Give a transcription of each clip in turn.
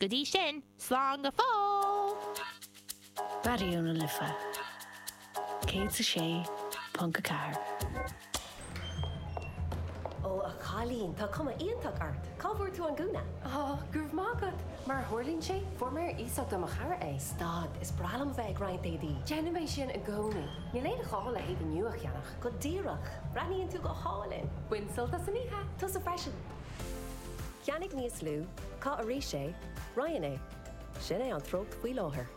Go dtí sin, slán go fóill! Raidió na Life 106.4. Ó a chailín, tá cuma iontach ort! Cá bhfuair tú an gúna? Ó, go raibh maith agat! Mar a tharlaíonn sé, fuair mé ar iasacht ó mo chara é. Stad, is breá liom a bheith ag roinnt éadaí! Déanaim é sin i gcónaí. Níl aon ghá le héadaí nua a cheannach. Go díreach! Breathnaíonn tú go hálainn! Bain sult as an oíche! Tusa freisin! Ceannaigh níos lú, caith arís é, roinn é. Sin é an treocht faoi láthair.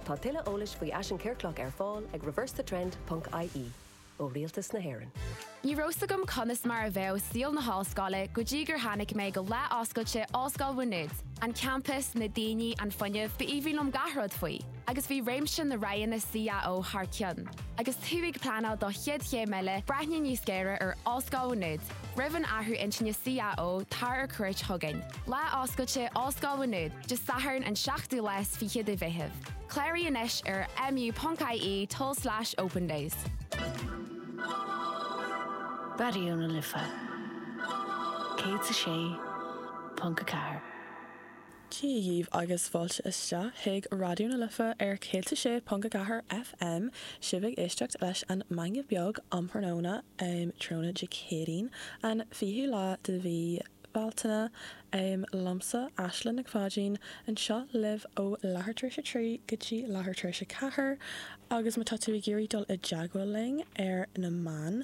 Tá tuilleadh eolais faoi fhaisean ciorclach ar fáil ag reversethetrend ponc ie, ó rialtas na hÉireann. Ní raibh 's agam conas mar a bheadh saol na hollscoile go dtí gur tháinig mé go Lá Oscailte Ollscoil Mhá Nuad. An campas, na daoine, an fuinneamh, b'aoibhinn liom gach rud faoi. Agus bhí réimse na roghanna CAO thar cionn. Agus tú ag pleanáil do chéad chéim eile, breathnaigh níos géire ar Ollscoil Mhá Nuad. Roimh an athrú intinne CAO, tar ar cuairt chugainn. Lá Oscailte, Ollscoil Mhá Nuad, Dé Sathairn an 7ú lá is fiche de Mheitheamh. Cláraigh anois ar mu.ie tulslais opendays. Raidió na Life 106.4. Dia dhíbh agus fáilte isteach chuig Raidió na Life ar 106.4 FM. Sibh ag éisteacht leis an Meangadh Beag um thráthnóna um tráthnóna Dé Céadaoin, an 20ú lá de mhí Bhealtaine. Liomsa Aisling Nic Pháidín, anseo libh ó leathuair tar éis a trí go dtí leathuair tar éis a ceathair agus má tá tú ag iarraidh dul i dteagmháil linn ar na meáin,